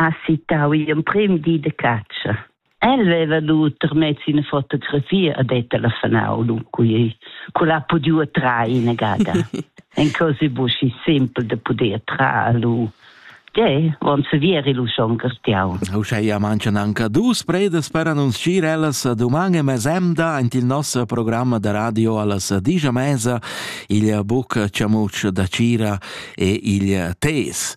ha citau igl emprem di de catscha. El veva duter mez ina fotografia a det telefonau lu qui cu l'ha podiu trar ina gada. En cose buschi simpel de poder trar lu. Ge, von se vieri lu schon gartiau. Uschia mancan anche dus predes per annunciar ellas doman e mesemda ant il nostro programma da radio allas digia mesa il buc ciamuccio da Cira e il Tes.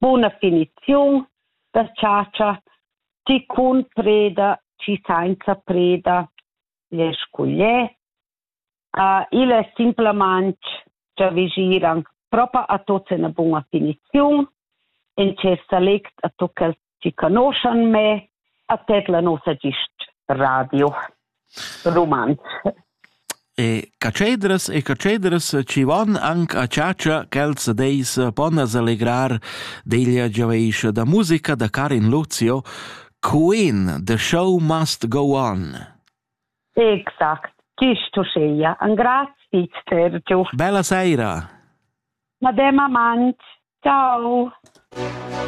Buna finiziun da chatscha, chi cun preda, chi sainza preda l'es cugliè. Il es simplamaing giavüschiran propa a tuots üna buna finiziun, in tschess salect a tuot quels ti conoschan me a tet la nossa gist radio rumantsch. E catschedras e catschedras ci van anc a ciacia quels deis pon as allegrar deglia giaveiscia da musica da Karin Luzio Queen, The Show Must Go On. Exact, gist uscheia, an grazie Sergio. Bella seira. Madem amant, ciao. Ciao.